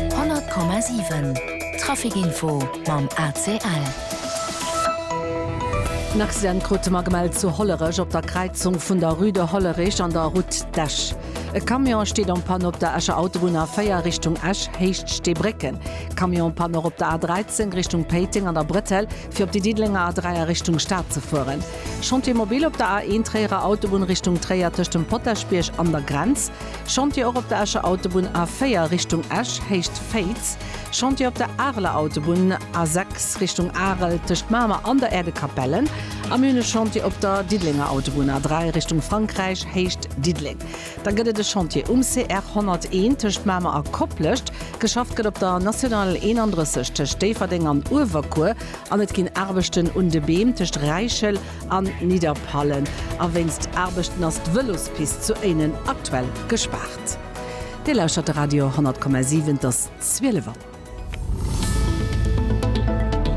100,7 Traficinfo mam ACL. En Accident krute mer gemellt zu Hollerech op der Kräizung vun der Rue de Hollerich an der Route d'Esch. E Camion steet en panne op der Escher Autobunn A4 Richtung Esch, Héicht Steebrécken. Camion en panne och op der A13 Richtung Péiteng an der Bretelle fir op déi Diddelenger A3 a Richtung Stad ze fueren. Chantier mobile op der A1 Tréierer Autobunn Richtung Tréier tëscht dem Potaschbierg an der Grenz. Chantier och op der Escher Autobunn A4 Richtung Esch, Héicht Féiz, Chantier op der Areler Autobunn A6 Richtung Arel tëscht Mamer an der Äerdekapelle a mir hunn e Chantier op der Diddelenger Autobunn A3 Richtung Frankräich, Héicht Diddeleng. Da gëtt et e Chantier um CR 101 tëscht Mamer a Koplescht. Geschafft gëtt op der National 31 tëscht Déifferdeng an Uewerkuer an et ginn Aarbechten un de Beem tëscht Räichel a Nidderpallen a wéinst Aarbechten ass d'Vëlospist zu Éinen aktuell gespaart. Dir lauschtert de Radio 10,7, et ass 12 Auer.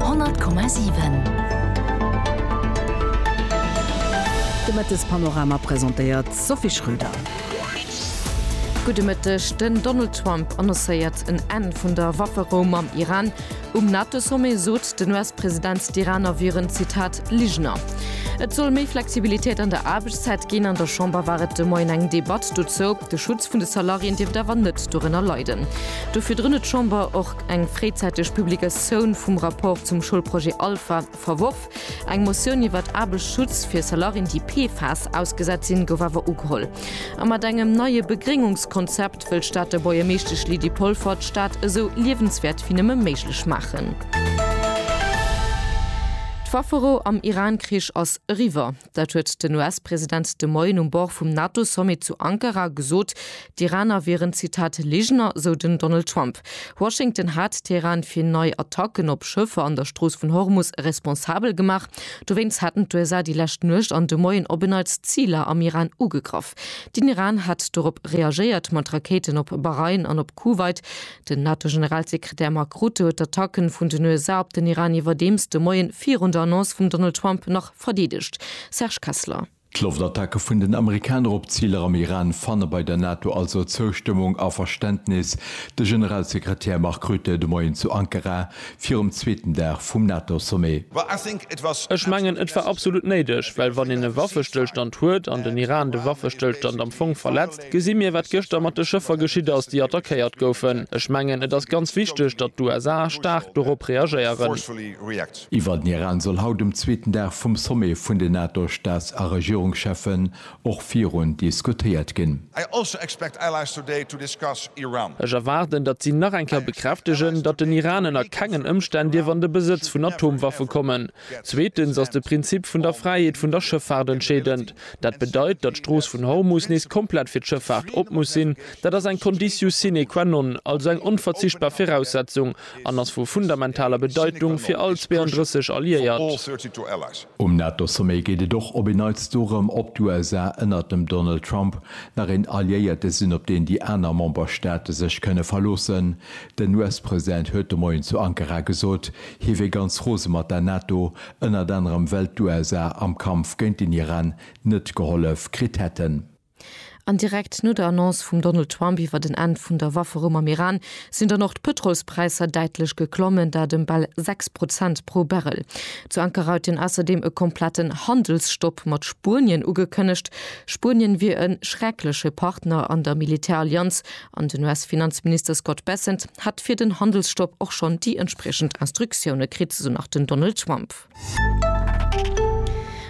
10,7 De Mëttespanorama presentéiert d'Sophie Schröder. Gudde Mëtteg, Den Donald Trump annoncéiert en Enn vun der Wafferou mam Iran. Um NATO-Sommet sot den US-President, d'Iraner wieren, Zitat, Ligener. Et soll méi Flexibilitéit an der Aarbechtszäit ginn. An der Chamber war et de Moien eng Debatt dozou. De Schutz vun de Salariéen dierft awer net dorënner leiden. Dofir drënn huet d'Chamber och eng fréizäiteg Publikatioun vum Rapport zum Schoulprojet Alpha, Verworf. Eng Motioun iwwert Aarbechtsschutz fir Salarien déi PFAS ausgesat sinn gouf awer ugeholl. A mat engem neie Begréngungskonzept wëll d'Stater Buergermeeschtesch Lydie Polfer d'Stad esou liewenswäert wéi nëmme méiglech maachen. D'Wafferou am Iran-Krich ass eriwwer. Dat huet den US-President de Moien um Bord vum NATO-Sommet zu Ankara gesot. D'Iraner wieren, Zitat, Ligener, sou den Donald Trump. Washington hat Teheran fir nei Attacken op Schëffer an der Strooss vun Hormus responsabel gemaach. Dowéinst haten d'USA déi lescht Nuecht an de Moien op en Neits Ziler am Iran ugegraff. Den Iran hat dorop reagéiert mat Rakéiten op Bahrain an op Kuwait. Den NATO-Generalsekretär Mark Rutte huet d'Attacken vun den USA op den Iran iwwerdeems de Moien virun der Annonce vum Donald Trump nach verdeedegt. Serge Kessler. D'Loftattacke vun den Amerikaner op Ziler am Iran fanne bei der NATO also Zoustëmmung a Verständnis. De Generalsekretär Mark Rutte de Moien zu Ankara virum zweeten Dag vum NATO-Sommet. Ech mengen, et war absolut néideg, well wann een e Waffestëllstand huet an den Iran de Waffestëllstand am Fong verletzt, gesi mir wat gëschter mat de Schëffer geschitt ass, déi attackéiert goufen. Ech mengen, et ass ganz wichteg, datt d'USA staark dorop reagéieren. Iwwer den Iran soll haut um zweeten Dag vum Sommet vun den NATO-Staats a Regierungscheffen och virun diskutéiert ginn. I also expect allies today to discuss Iran. Ech erwaarden, datt si nach eng Kéier bekräftegen, datt den Iran ënner kengen Ëmstänn dierf an de Besëtz vun Atomwaffe kommen. Zweetens ass de Prinzip vun der Fräiheet vun der Schëffaart entscheedend. Dat bedeit, datt d'Strooss vun Hormus nees komplett fir d'Schëffaart op muss sinn. Dat ass eng Conditio sine qua non, also eng onverzichtbar Viraussetzung, an ass vu fundamentaler Bedeitung fir all 32 Alliéiert. Um NATO-Sommet geet et och op een Neits dorëm, ob d'USA ënnert dem Donald Trump nach een Alliéierte sinn, op deen déi aner Memberstaate sech kënne verloossen. Den US-President huet de Moien zu Ankara gesot, hie wier ganz rose mat der NATO, ënnert anerem well d'USA am Kampf géint den Iran net gehollef kritt hätten. An direkt no der Annonce vum Donald Trump iwwer den Enn vun der Wafferou mam Iran sinn dann och d'Pëtrolspräisser däitlech geklommen, dat ëm bal 6 Prozent pro Barrel. Zu Ankara huet een ausserdeem e kompletten Handelsstopp mat Spuenien ugekënnegt. Spuenien wier e schreckleche Partner an der Militärallianz an den US-Finanzminister Scott Bessent hätt fir den Handelsstopp och schonn déi entspriechend Instruktioune kritt, esou nach den Donald Trump.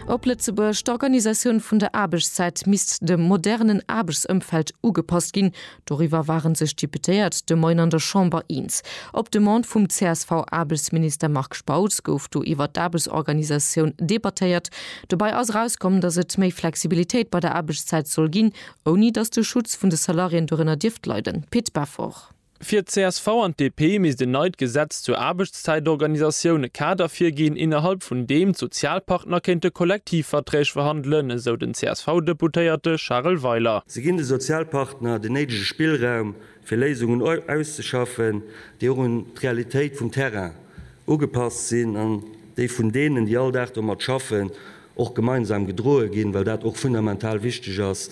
Op Lëtzebuerg, D'Organisatioun vun der Aarbechtszäit misst dem modernen Aarbechtsëmfeld ugepasst ginn. Doriwwer ware sech d'Deputéiert de Moien an der Chamber eens. Op Demande vum CSV-Aarbechtsminister Marc Spautz gouf do iwwer d'Aarbechtsorganisatioun debattéiert. Dobäi ass erauskomm, datt et méi Flexibilitéit bei der Aarbechtszäit soll ginn, ouni datt de Schutz vun de Salariéen dorënner dierft leiden. Pit Beffort. Fir d'CSV an d'DP misst en neit Gesetz zur Aarbechtszäitorganisatioun e Kader virginn, innerhalb vun deem d'Sozialpartner kéinte Kollektivverträg verhandelen, esou den CSV-Deputéierte Charel Weiler. Se ginn de Sozialpartner den néidege Spillraum, fir Léisungen auszeschaffen, déi och un d'Realitéit vum Terrain ugepasst sinn an déi vun deenen, déi all Dag domat schaffen, och gemeinsam gedroe ginn, well dat och fundamental wichteg ass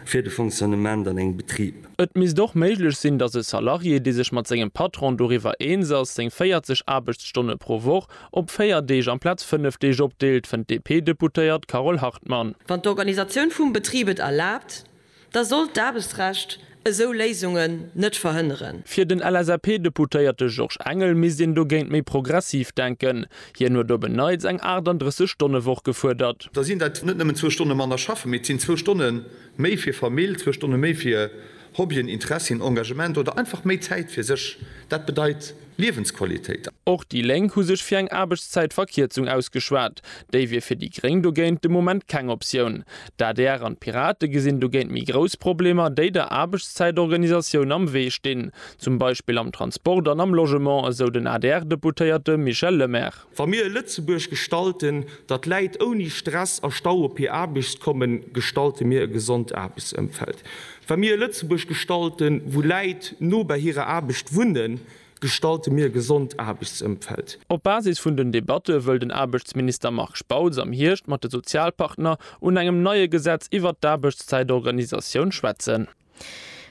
fir de Fonctionnement an engem Betrib. Et misst och méiglech sinn, datt e Salarié, dee sech mat sengem Patron doriwwer eens ass, seng 40 Aarbechtsstonne pro Woch op véier Deeg amplaz fënnef Deeg opdeelt, fënnt d'DP-Deputéiert Carole Hartmann. Wann d'Organisatioun vum Betrib et erlaabt, da sollt d'Aarbechtsrecht esou Léisungen net verhënneren. Fir den LSAP-Deputéierte Georges Engel misst een dogéint méi progressiv denken. Hien huet op en Neits eng 38 Stonne Woch gefuerdert. Da sinn dat net nëmmen zwou Stonne manner schaffen, mee et sinn zwou Stonne méi fir Famill, zwou Stonne méi fir Hobbyen, Interessien, Engagement oder einfach méi Zäit fir sech. Dat bedeit Liewensqualitéit. Och déi Lénk hu sech fir eng Aarbechtszäitverkierzung ausgeschwat. Déi wier fir déi Gréng dogéint de Moment keng Optioun. D'adr an d'Pirate gesinn dogéint méi grouss Problemer, déi der Aarbechtszäitorganisatioun am Wee stinn, zum Beispill am Transport an am Logement, esou den ADR-Deputéierte Michel Lemaire. Wa mir e Lëtzebuerg gestalten, dat läit ouni Stress a Stau op hir Aarbecht kommen, gestalte mir e gesond Aarbechtsëmfeld. Wa mir e Lëtzebuerg gestalten, wou Läit no bei hirer Aarbecht wunnen, gestalte mir e gesond Aarbechtsëmfeld. Op Basis vun den Debatte wëll den Aarbechtsminister Marc Spautz am Hierscht mat de Sozialpartner un engem neie Gesetz iwwert d'Aarbechtszäitorganisatioun schwätzen.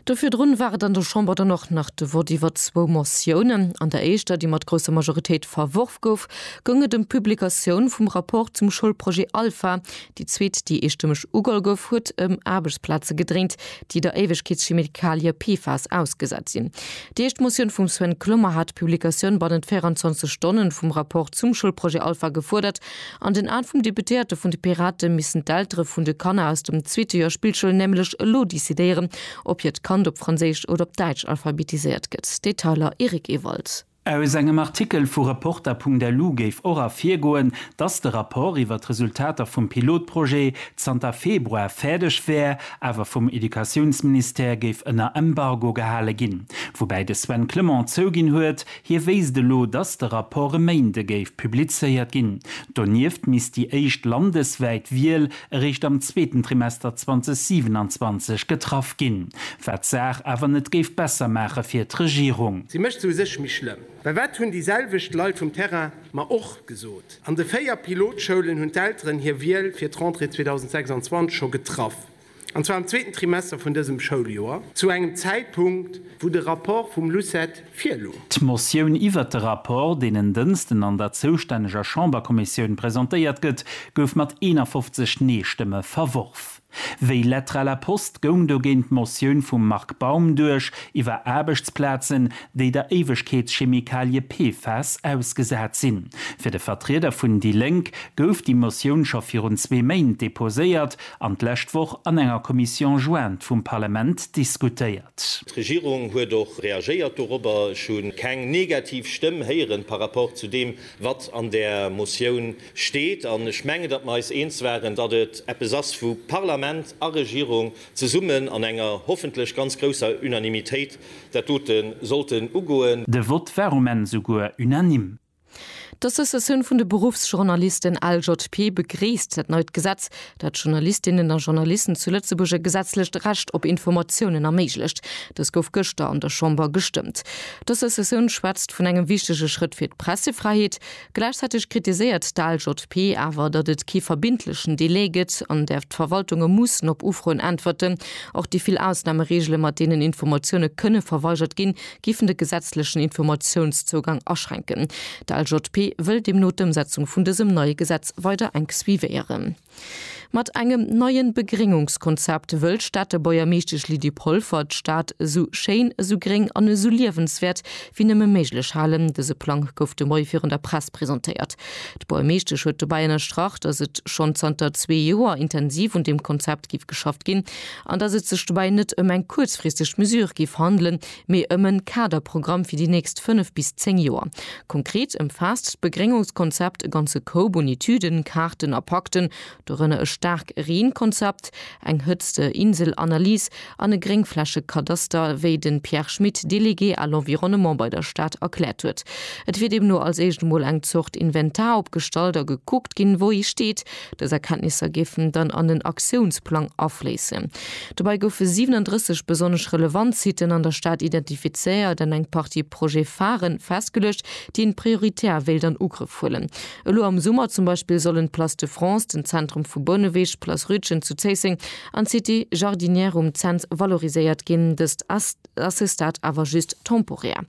Do virdrun war et an der Chamber dann och nach de Vott iwwert zwou Motiounen. An der éischter, déi mat grousser Majoritéit verworf gouf, goung et ëm d'Publikatioun vum Rapport zum Schoulprojet Alpha. Déi zweet, déi eestëmmeg ugeholl gouf, huet ëm Aarbechtsplaze gedréint, déi der Éiwegkeetschemikalie PFAS ausgesat sinn. Déi éischt Motioun vum Sven Clement hat d'Publikatioun bannent 24 Stonne vum Rapport zum Schoulprojet Alpha gefuerdert. An den Aen vum Deputéierte vun de Pirate missen d'Eltere vun de Kanner aus dem zweete Joer Spillschoul nämlech elo decidéieren, ob hiert Kand op Franséisch oder op Däitsch alphabetiséiert gëtt. Detailer, Eric Ewald. Aus engem Artikel vu Reporter.lu géif och ervirgoen, datt de Rapport iwwer d'Resultater vum Pilotprojet zanter Februar fäerdeg wär, awer vum Educatiounsministère géif ënner Embargo gehale ginn. Woubäi de Sven Clement zouginn huet, Hie wéisst elo, datt de Rapport e Méinde géif publizéiert ginn. Donieft misst déi éischt landeswäit Wiel eréischt am zweeten Trimester 2027 getraff ginn, wat d'Saach awer net géif besser maache fir d'Regierung. Si mécht se u sech méi schlëmm. Well wat hunn déi selwecht Leit vum Terrain mer och gesot? An de véier Pilotschoulen hunn d'Elteren hir Wiel fir d'Rentrée 2026 scho getraff. an zwar am zweeten Trimester vun dësem Schouljoer, zu engem Zäitpunkt, wou de Rapport vum LUCET virlung. D'Motioun iwwert de Rapport, deen en Dënsten an der zoustänneger Chamberkommissioun presentéiert gëtt, gouf mat 51 Nee-Stëmme verworf. Wéi Lettre à la poste goung dogéint d'Motioun vum Marc Baum duerch, iwwer Aarbechtsplazen, déi der Éiwegkeetschemikalie PFAS ausgesat sinn. Fir de Vertrieder vun déi Lénk gouf déi Motioun scho virun zwee Méint deposéiert, an d'lescht Woch an enger Commission jointe vum Parlament diskutéiert. D'Regierung huet och reagéiert dorobber. Ech hu keng negativ Stëmm héieren par rapport zu deem, wat an där Motioun steet. An ech mengen, datt mer eis eens waren, datt et eppes ass, wou Parlament a Regierung zesummen an enger hoffentlech ganz grousser Unanimitéit dat dote sollten ugoen. De Vott war um Enn souguer unanime. D'Associatioun vun de Beruffsjournalisten, LJP, begréisst dat neit Gesetz, dat Journalistinnen a Journalisten zu Lëtzebuerg e gesetzlecht Recht op Informatiounen erméiglecht. Dës gouf gëschter an der Chamber gestëmmt. D'Associatioun schwätzt vun engem wichtege Schrëtt fir d'Pressefräiheet. Gläichzäiteg kritiséiert d'LJP awer, datt et kee verbindlechen Delai gëtt, an där d'Verwaltunge mussen op Ufroen äntwerten. Och déi vill Ausnamereegele mat deenen Informatioune kënne verweigert ginn, géifen de gesetzlechen Informatiounszougang aschränken. De LJP wëll deemno d'Ëmsetzung vun dësem neie Gesetz weider enk suivéieren. Mat engem neien Begréngungskonzept wëll d'Stater Bourgermeeschtesch Lydie Polfer d'Stad esou schéin, esou gréng an esou liewenswäert wéi nëmme méiglech halen. Dëse Plang gouf de Moie virun der Press presentéiert. D'Bourgermeeschtesch huet dobäi ënnerstrach, datt et schonn zanter zwee Joer intensiv un deem Konzept géif geschafft ginn. an dass et sech dobäi net ëm eng kuerzfristeg Mesure géif handelen, mee ëm e Kaderprogramm fir déi nächst fënnef bis zéng Joer. Konkret ëmfaasst d'Begréngungskonzept e ganze Koup un Etüden, Kaarten a Pakten, dorënner e Staarkreenkonzept, eng Hëtzte-Insel-Analys an e Gréngflächekadaster, wéi de Pierre Schmit, Délégué à l'environnement bei der Stad, erkläert huet. Et wier deemno als éischt emol eng Zort Inventar opgestallt a gekuckt ginn, wou ee steet, Dës Erkenntnisser géifen dann an en Aktiounsplang afléissen. Dobäi goufe 37 besonnesch relevant Siten an der Stad identifizéiert an eng Partie Projet-Pharen festgeluecht, déi een prioritär wéilt an Ugrëff huelen. Elo am Summer zum Beispill sollen d'Place de France, den Zentrum vu Bouneweg, d'Place Rütgen zu Zéisseng an d'Cité Jardinière um Cents valoriséiert ginn. Dëst ass à ce stade awer just temporär.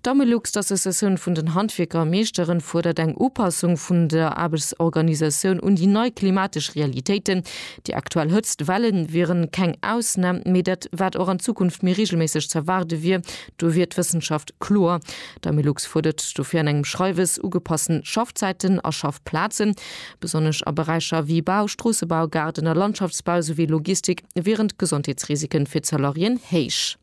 D'Amelux, d'Associatioun vun den Handwierker a Meeschteren, fuerdert eng Upassung vun der Aarbechtsorganisatioun un déi nei klimatesch Realitéiten. Déi aktuell Hëtzt Welle wieren keng Ausnam, mee dat wat och an Zukunft méi reegelméisseg z'erwaarde wier, do wier d'Wëssenschaft kloer. D'Amelux fuerdert dofir an engem Schreiwes ugepassten Schaffzäiten a Schaffplazen. Besonnesch a Beräicher wéi Bau, Stroossebau, Gaarden a Landschaftsbau, souwéi Logistik wieren d'Gesondheetsrisiken fir d'Salariéen héich.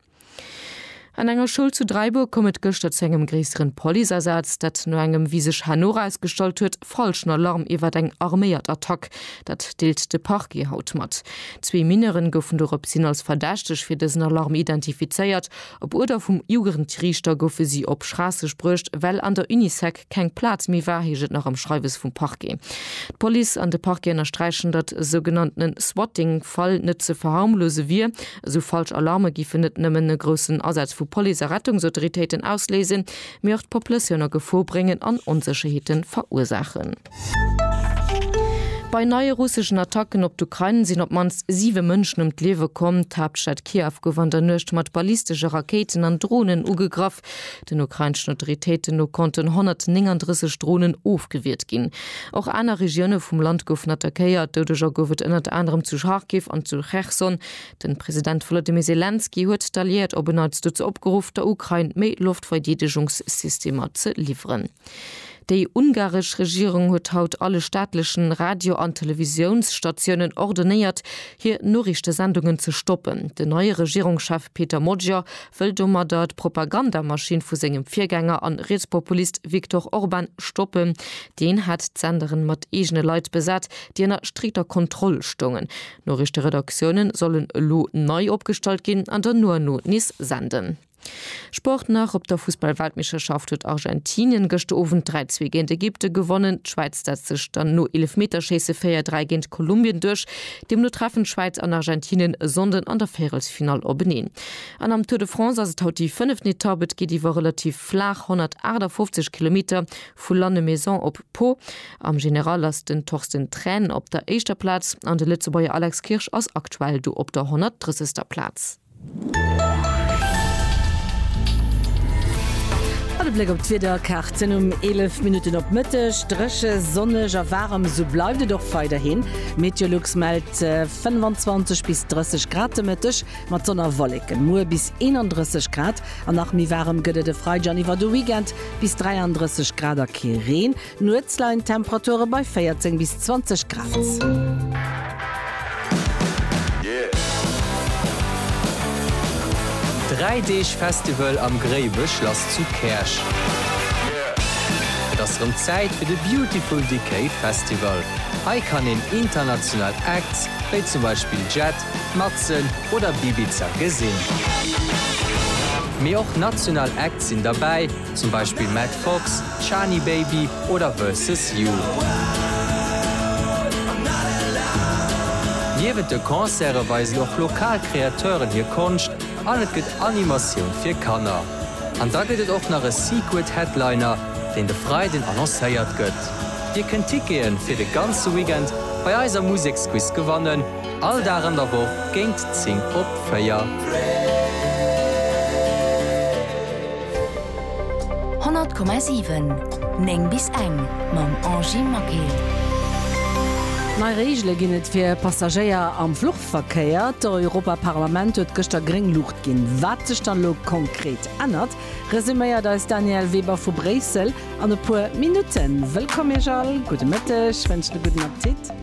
An enger Schoul zu Dräibuer koum et gëschter zu engem gréisseren Policeasaz, dat no engem, wéi sech herno erausgestallt huet, falschen Alarm iwwert eng arméiert Attack. Dat deelt de Parquet haut mat. Zwee Mineuren goufen doropshin als Verdächteg fir dësen Alarm identifizéiert. Op Uerder vum Jugendriichter goufe si op Schraasseg bruecht, well an der Unisec, keng Plaz méi war, heescht et nach am Schreiwes vum Parquet. D'Police an de Parquet ënnersträichen, datt e sougenanntene Swatting-Fall net ze verharmlose wier. Esou falsch Alarme géifen net nëmmen e groussen Asaz vu Police a Rettungsautoritéiten ausléisen, mee och d'Populatioun a Gefor bréngen an Onsécherheete verursaachen. Bei neie russeschen Attacken op d'Ukrain sinn op d'mannst siwe Mënschen ëm d'Liewe komm. D'Haaptstad Kiew gouf an der Nuecht mat ballistesche Rakéiten an Dronen ugegraff. Den ukrainschen Autoritéiten no konnten 139 Dronen ofgewiert ginn. Och aner Regioune vum Land goufen attackéiert. Doudeger gouf et ënnert anerem zu Charkiw an zu Cherson. De President Wolodymyr Selenskyj huet d'Alliéiert op en Neits dozou opgeruff, der Ukrain méi Loftverdeedegungssystemer ze liwweren. Déi ungaresch Regierung huet haut alle staatlechen Radio an Televisiounsstatiounen ordonéiert, hir Noriichtesendungen ze stoppen. Den neie Regierungschef Peter Magyar wëll domadder d'Propagandamaschinn vu sengem Virgänger an Rietspopulist Viktor Orban stoppen. Deen hat d'Senderen mat eegene Leit besat, déi ënner strikter Kontroll stoungen. D'Noriichteredaktiounen sollen elo nei opgestallt ginn an der Nuano nees senden. Sport nach, Op der Fussballweltmeeschterschaft huet Argentinien gëschter Owend 3, 2 géint Ägypte gewonnen. D'Schwäiz setzt sech dann no Eelefmeterschéisse 4, 3 géint Kolumbien duerch. Deemno treffen d'Schwäiz an Argentinien e Sonnden an der Véierelsfinall openeen. An am Tour de France ass et haut déi fënneft Etapp. Et geet iwwer relativ flaach 158 Kilometer vu Lannemezan op Pau. Am General ass den Torsten Tren op der éischter Plaz an de Lëtzebuerger Alex Kirsch ass aktuell do op der 130. Plaz. An e Bléck op d'Wiederkaarten, Um 11 Minutten op Mëtteg dréche, sonneg a waarem, esou bleift et och weiderhin. Meteolux mellt 25 bis 30 Grad de Mëtteg, Mat Sonn a Wolleken, muer bis 31 Grad an nach méi waarem gëtt et e Freideg an iwwer de Weekend, bis 33 Grad a kee Reen. Nuets leien d'Temperature bei 14 bis 20 Grad. Dräi Deeg Festival am Gréiwechlass zu Käerch. Et ass rëm Zäit fir de Beautiful Decay Festival. Hei kann een international Acts, wéi zum Beispill Jet. Matzen oder Bibiza gesinn. Mee och national Acts sinn derbäi, zum Beispill Matt Fox, Chani Baby oder Versus You. Niewent de Concerte weisen och lokal Kreateuren hir Konscht an et gëtt Animatioun fir Kanner. An da gëtt et och nach e Secret Headliner, deen de Freiden annoncéiert gëtt. Dir kënnt Tickete fir de ganze Weekend bei eiser Museksquiz gewannen. All Dag an der Woch géint 10 op 4. Honnert Komma siwen, néng bis eng, mam Angie Maquet. Nei Reegele ginn et fir Passagéier am Fluchverkéier. D'Europaparlament huet gëschter gréng Luucht ginn. Wat sech dann elo konkret ännert, resuméiert eis Danièle Weber vu Bréissel an e puer Minutten. Wëllkomm Iech all, gudde Mëtteg, wënschen e gudden Appetit.